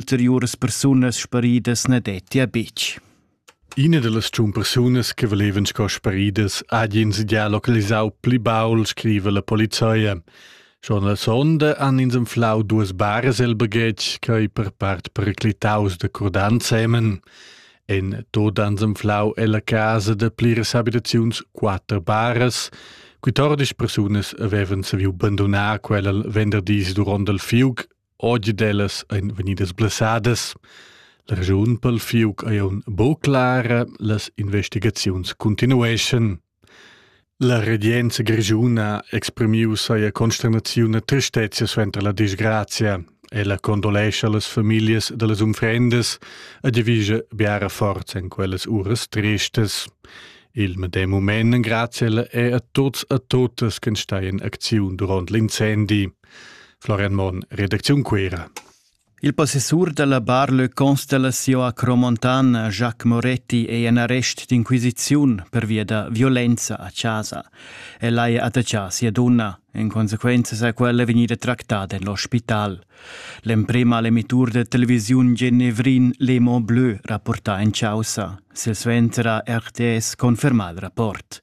ulteriuras persunas sparidas na dettia betg. Ina da las tschun persunas che valevan sco sparidas ha ins già localisau pli baul, scrive la polizia. Schon la sonda han ins anflau duas baras el baghetg che per part periclitaus da cordant semen. En tot ans anflau ella casa da pliras abitaziuns quatter baras. Quittordisch persunas avevan saviu bandonar quella venderdis duront il fiug Oggi dellas ein vegnidas blessadas. La raschun pel fiuc ei aun buca clara, las investigaziuns continueschan. La regenza grischuna exprimiu seia consternaziun e tristezia suenter la disgrazia. Ella condolescha las familias dallas unfrendas e divisa biara forza en quellas uras tristas. Il medem moment grazie è a tuts e tuttas che steien acziun durant l'incendi. Florian Monn, redacziun Cuera. Il possessur dalla Bar Le Constellation a Cromontana, Jacques Moretti, è en arrest d'inquisiziun pervia da violenza a casa. El ha attaccà sia donna. En consequenza sa quella vegnida tractada en l'ospital. L'emprema l'emittur de televisiun genevrin Le Mont Bleu rapporta en causa. Silsuenter ha RTS confermà il rapport.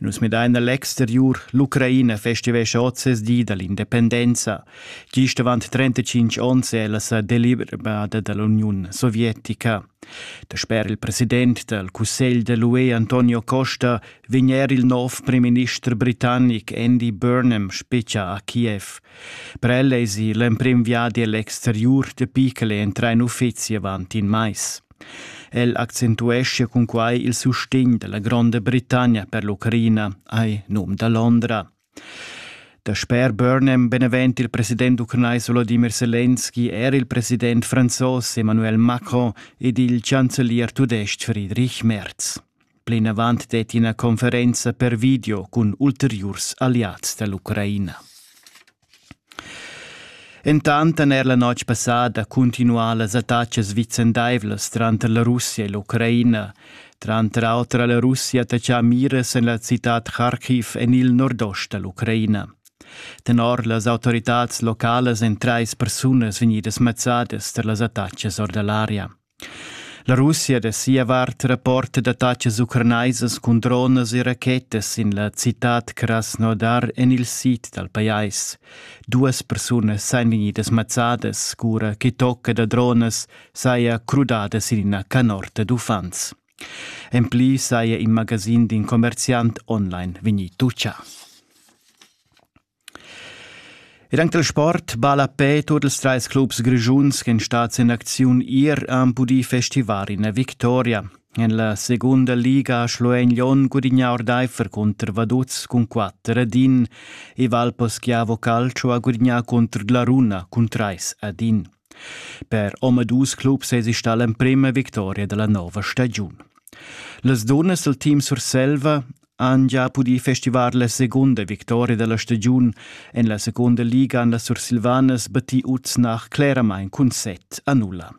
Nus midain a l'exteriur. L'Ucraina festivescha oz ses di da l'independenza. Gist avant 35 onns è ella sa deliberada da l'Uniun sovietica. Dasper il president dal cussegl da l'UE Antonio Costa vegn er il nov primminister britannic Andy Burnham spetga a Kiev. Per el èsi l'emprim viadi a l'exteriur dapi ch'el entra in uffizi avant in mais. El accentueschia cunquai il sustegn da la Gronda Britannia per l'Ucraina ai num da Londra. Dasper Burnham benevent il president ucranais Volodymyr Selenski era il president franzos Emmanuel Macron ed il chancelier tudestg Friedrich Merz. Plinavant detti ina conferenza per video cun ulteriurs alliads da l'Ucraina. Entant han er la notg passada cuntinuà las attacas vicendaivlas tranter la Russia e l'Ucraina. Tranter auter ha la Russia attachà miras en la citad Kharkiv en il nordost da l'Ucraina. Tenor las autoritads localas èn trais persunas vegnidas mazzadas tar las attacas or da l'aria. La Russia da sia vart rapporta d'attatgas ucranaisas cun dronas e rachetas in la citad Krasnodar en il sid dal pajais. Duas persunas èn vegnidas mazzadas cura che tocca da dronas saja crudadas in ina canorta d'uffants. En pli saja in magasin d'in commerziant online vegnì tutgà. Ed anc dal sport balla a pe tuot ils trais clubs grischuns ch'en stats in acziun ir han pudì festivar ina victoria. En la segunda liga ha Schluein Lyon gudignà ordaifer cunter Vaduz cun quatter ad in e Valposchiavo Calcio ha gudignà cunter Glaruna cun trais ad in. Per omadus clubs sesi stà l'emprima victoria dalla nova stagiun. Las dunnas del team Surselva han già pudì festivar la segunda victoria della stagiun en la seconda liga an las Sursilvanas battì uts nach claramain cun set a nulla.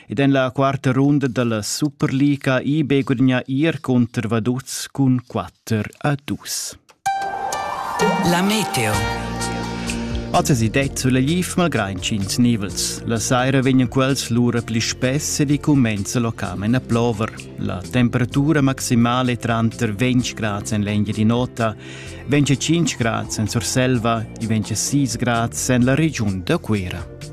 Ed en la quarta runda della Superliga IB guadagna ir contro Vaduz cun 4 a 2. La meteo. Atesi det sulla gif malgrain ch'ins nivels. La saira vegnan quels lura pli spess ed i cumenza locamen a plover. La temperatura maximale è tranter 20 grad en l'engia di nota, 25 grad en Surselva e 26 grad en la regiun da Cuera.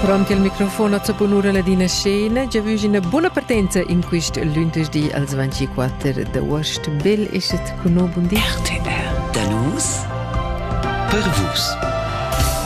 Pront il microfon a bunura ladina scena, già vus ina buna partenza in quist lunedì als 24 d'aost. Bel eschet con no bundi. RTR. Da nus per vus.